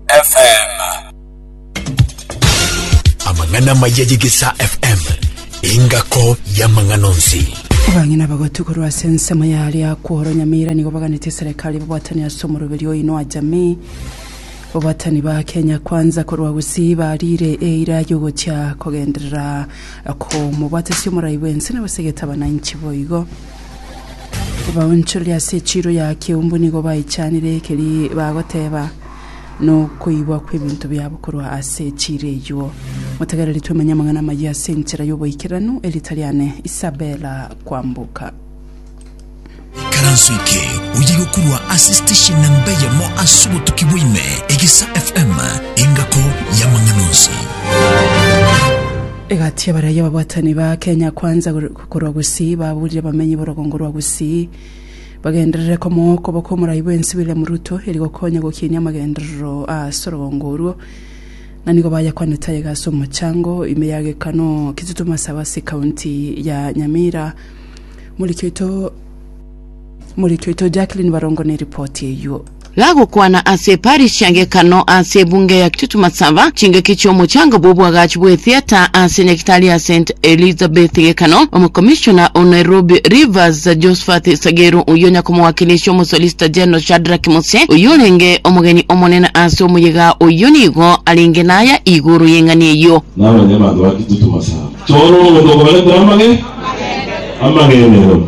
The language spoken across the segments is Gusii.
FM. Amang'ana amaya y'Egesaa FM, engako y'amang'ana onsi. Abang'ina bagotwe korwa ase ensemo ya ria kworo Nyamira nigo baganete eserekari babwatani ase omoroberi oino a jamii. Babwatani ba Kenya Kwanza korwa Gusii barire eira yogochia kogenderera komobwatasi omorai bwense na basegete abananchi boigo. Abaonchoreri ase echiro ya Kiumbu nigo baichanire ekeri bagoteba nokoigwa kw'ebinto biabo korwa ase echiire eyio. Motegereri twemenye amang'ana amayia ase enchera y'oboikeranu, erita riane Isabella Kwamboka. Ikaranso eke oyigo korwa ase station namba eyemo ase obotuki bwa ime, Egesa FM, engako y'amang'ana onsi. Egati y'abaraiyo ababwatani ba Kenya Kwanza korwa Gusii baburire abamenyi b'orogongo rwa Gusii bagenderere komoa okoboko omorai bwensi William Ruto eri gokonya gokinia amagenderero ase orogongo orwo, na nigo bayakwanete aye gase omochango ime ya gekano Kitutu Masawe ase ekaunti ya Nyamira. Moriki oito Moriki oito Jacqueline Barongo neripoti eyuo. Gagokwana ase Paris chiagekano ase ebunge ya Kitutumasaba chingaki chi'omochanga bw'obwagachi bw'etheater ase nyagitari ya St Elizabeth gekano omokomishona o Nairobi Rivers Josphat Sageru oyio nyakomowakilisha omosolicitor general Shadrack Mose oyio orenge omogeni omonene ase omoyega oyio nigo arenge naya igoro y'eng'ani eyio. Naro inye abanto ba Kitutumasaba, chora omonto okobaretera amage, amagenderero.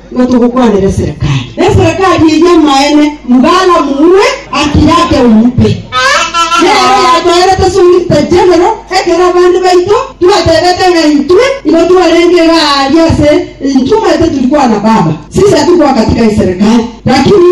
Nigo togokwanera eserekari neserekari eye y'amaene, Mgala Mue Akiyake Omupe. Nere oyatoerete Solicitor General ekero abande baito twatebete ng'a intwe igo twarenge iga aaria ase intwe omanyete tiri kwana baba, sisi atigwakatiga eserekari, lakini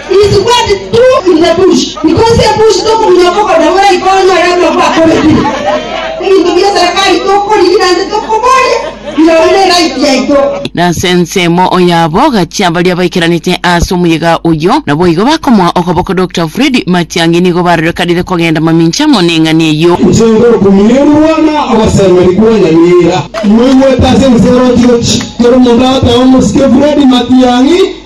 Na ase ensemo yabo gachia baria baikaranete ase omoyega oyio, naboigo bakomoa okoboko Doctor Fred Matiang'i nigo barorekanire kogenda mamincha amo neng'ani eyio. Inche ngokumia eburwa na ogosemeri kw'onyamira. Moigwete ase ense oroche gochi, kera omonto agoteeba omosike Fred Matiang'i.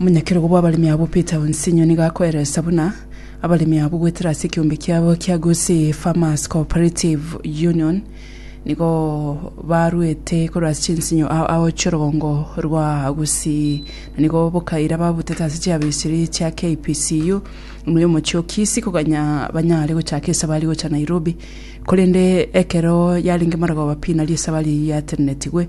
Omonyakerogo bw'abaremi abwo Peter Onsinyo nigo akoeresa buna abaremi abwo goetera ase ekeombe kiabo kia Gusii Farmers Co-operative Union nigo baruete korwa ase chinsinyo ao ao chi'orogongo rwa Gusii na nigo bokaira babutete ase chiabisiri chia KPCU ime y'omochie o Kisii koganya banyare gochaka esabari gocha Nairobi korende ekero yarenge Marogoba Pi nario esabari yatenenetigwe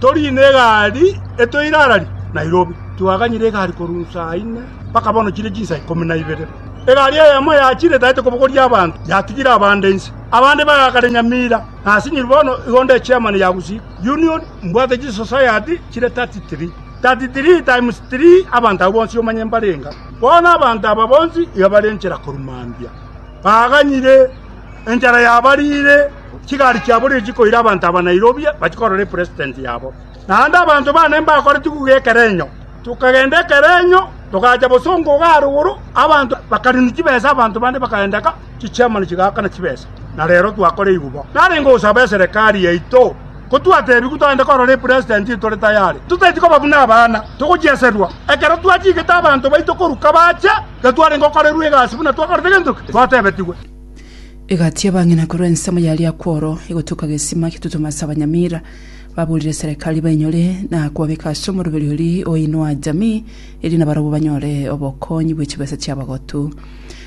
toriine egari etwe ire arari Nairobi. Twaganyire egari korwa insaa ine mpaka bono chire chinsa ikomi na ibere. Egari eyemo yachire etaete kobogoria abanto, yatigire abande inse. Abande bagaka na enyamira, na asinyiru bono igo nde chairman ya gusii union, mbwate chisociety chire 33. 33 times 3 abanto abwo bonsi omanye mbare enga. Bono abanto aba bonsi iga bare enchera korwa mambia. Baganyire enchera yabarire. Chigari chiabo nigo chikoira abanto aba Nairobi bachie korora epresident yabo. Naende abanto bane mbakore tiguga ekerenyo, tokagenda ekerenyo togacha bosongo iga arigoro, abanto bakarina chibesa abanto bande bakagenda ka chichairman chigakana chibesa na rero twakora eyi bo. Narenge gosaba eserekari yaito kotwatebigu togende korora epresident tore tayari, totaeti koba buna abana togocheserwa. Ekero twachigete abanto baito koruka bache, gatwarenge okorerwa egasi buna twakorete gento ki? Twatebetigwe. Egati y'abang'ina korwa ensemo ya Liakworo egotuka gesima gitutume ase abanyamira baburire eserekari bainyore na kobabeka ase omoroberi oria oinwa jamii eria nabarabwo banyore obokonyi bwe chibesa chi'abagotu.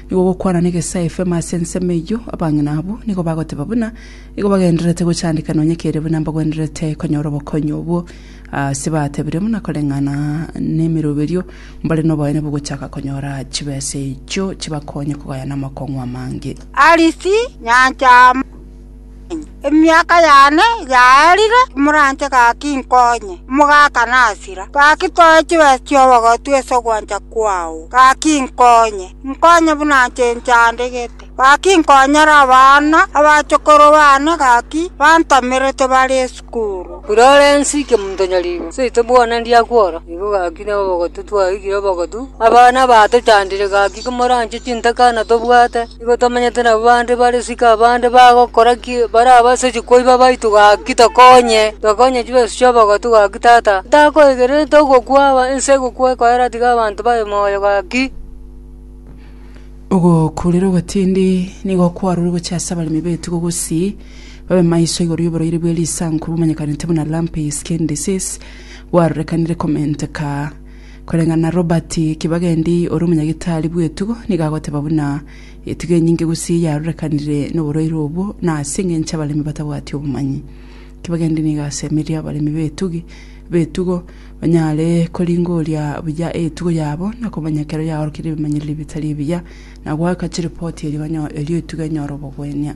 Nigo gokwana negesae FM ase ensemo eyio abang'ina abwo nigo bagoteba buna igo bagendererete gochandeka nonye kere buna mbagwenererete konyora obokonyi obwo. Ase batebirie buna koreng'ana nemiroberio, mbare noboene bogochaka konyora chibesa echio chibakonye kogaya namakong'u amange. Alice Nyancha Amanyi, Emiaka yane igaerire, timoranche gaki nkonye omogaka nasira. Gaki toe chibesa chi'obogotu ase ogwancha kwao, gaki nkonye, nkonye buna nche nchandegete. Gaki nkonyora abana, abachokoro bane gaki bantamerete bare esukuru. Florence Kemonto Nyaribo, seito bwona ndiakwa oro, nigo gaki na obogotu twaigire obogotu. Abana batochandire gaki komoranche chintaka na tobwate, nigo tomenyete nabo bande bare isiko abande bagokora ki barabasetie koiba baito gaki tokonye, tokonye chibesu chi'obogotu gaki tata. Ntakoigererete ogokwa aba ense egokwa ekoera tiga abanto babe moyo gaki. Ogokurera obotindi nigo kwarure gochia ase abaremi b'etugo gosii babe maiso igoro y'oborwaire bwe risanku bomanyekanete buna lumpy skin disease bwarorekanire komenteka koreng'ana Robert Kibagendi ore omonyagitari bw'etugo nigo agoteba buna etugo enyinge gosii yarorekanire noborwaire obwo na ase engencho abaremi batabwati obomanyi. Tibagende nigo ase emeeri y'abaremi b'etugi, b'etugo, banyare koringoria buya etugo yabo, na komanya ekero yaorokeire ebimanyereri ebitari ebiya, na goaka chiripoti erio banyo- erio etugo enyore obogwenia.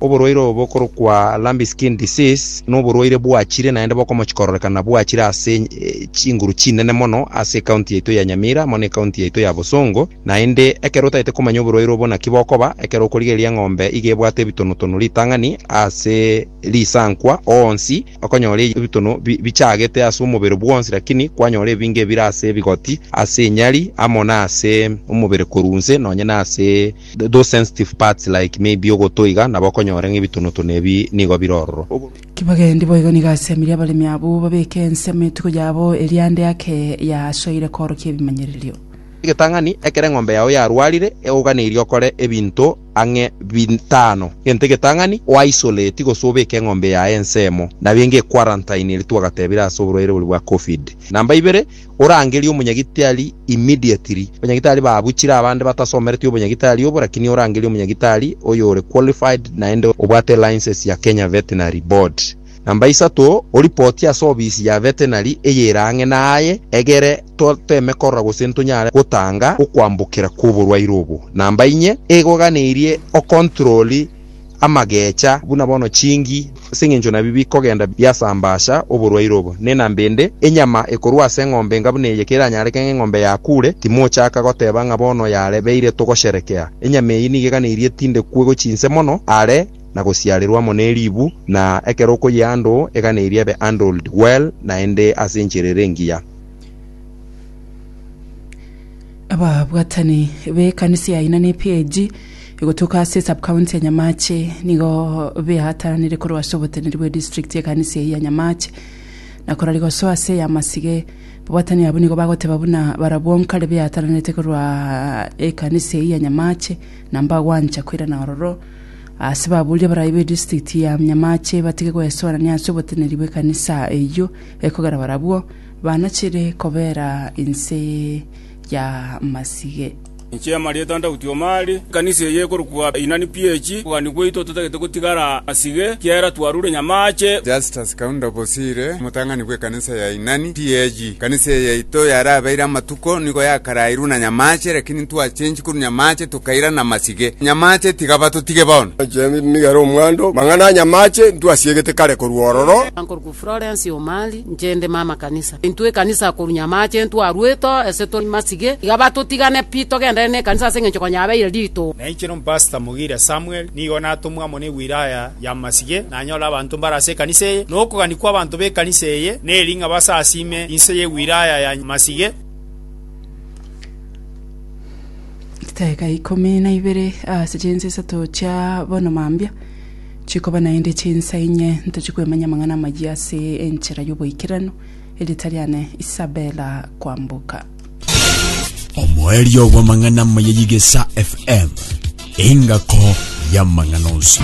Oborwaire obo bokorokwa lumpy skin disease noborwaire bwachire naende bokomochi kororekana bwachire ase chinguru chinene mono ase ecounty yaito ya Nyamira amo necounty yaito ya Bosongo. Naende ekero otaete komanya oborwaire obo naki bokoba, ekero okorigereria eng'ombe iga ebwate ebitonu-tonu ritang'ani ase risankwa, onsi okonyora ebitonu bichagete ase omobere bwonsi, lakini kwanyora ebinge ebire ase ebigoti, ase enyari, amo nase omobere korwa nse, nonye nase those sensitive parts like maybe ogoto iga, nabo okonyora ng'a ebitonu-tonu ebi nigo bire ororo. Kibagendi boigo nigo asemirie abaremi abwo babeke ensemo etuko yabo eria ande ake yasoire koorokia ebimanyererio. Egetang'ani ekero eng'ombe yao yarwarire, egoganeirie okore ebinto ang'e bitano, genta egetang'ani, o isolate gose obeke eng'ombe yaye ensemo, na benge equarantine eria twagatebire ase oborwaire boria bwa Covid. Namba ibere, orangerie omonyagitari immediately. Abanyagitari babuchire abande batasomereti obonyagitari obo, lakini orangerie omonyagitari oyore qualified naende obwate license ya Kenya Veterinary Board. Namba isato, oripotie ase ofisi ya vetenari eyere ang'e naye, egere toteme korora gose ntonyare gotanga okwambokera kw'oborwaire obo. Namba inye, egoganeirie okontroli amagecha buna bono chingi, ase engencho nabio bikogenda biasambasha oborwaire obo. Ne namba ende, enyama ekorwa ase eng'ombe enga buna eye keranyareke ng'a eng'ombe yakure, timochaka goteba ng'a bono yarebeire togosherekea. Enyama eyio nigo eganeirie tindekwe gochia inse mono are. na gosiarerwa amo neribu, na ekero okoyeando egana eria ebe handled well naende ase enchera ere engiya. Ababwatani b'ekanisa ya Aina ne PAG egotuka ase Sub-county ya Nyamache nigo beataranire korwa ase oboteneri bwe district y'ekanisa eyio ya Nyamache na korwa rigoso ase ey'amasige. Ababwatani abwo nigo bagoteba buna barabwo nkare beataranete korwa ekanisa eyio ya Nyamache na mbagwancha koirana ororo Ase babuuri abarai be district ya Nyamache batige gwesoorania ase oboteneri bw'ekanisa eyio ekogera barabwo banachire kobeera inse ya masige. Inche Marieta Ntauti Omari, ekanisa eye ekorokwa Inani PH, okogania gwaito totagete gotigara masige, kiagera twarure Nyamache. Justus Kaunda Bosire, omotang'ani bw'ekanisa. Ense ya Inani tiyechia. Ekanisa eye yaito yarabeire amatuko nigo yakarairwe na nyamache, lakini ntwachenchie korwa nyamache tokaira namasige. Nyamache tiga batotige bono. James nigo ere omwando. Mang'ana a nyamache ntwasiegete kare korwa ororo. Nkorokwo Florence Omari, inche inde mama kanisa. Intwe ekanisa korwa nyamache ntwarwete ase tori masige, tiga batotigane pi togenderere nekanisa ase engencho konya yabeire rito. Nainche nompastor Mugire Samuel nigo natomwa amo ne wilaya y'amasige, nanyore abanto mbare ase ekanisa eye, na okogania kw'abanto b'ekanisa eye, na eri ng'a basasiime inse ye wilaya ya Masige. Chitaiga ikomi na ibere ase chinsa isato chia bono mambia chikoba naende chinsa inye ntochie kwemanya amang'ana amayia ase enchera y'oboikeranu. Erieta riane Isabella Kwamboka. Omoerio bw'amang'ana amaya y'Egesaa FM, engako y'amang'ana onsi.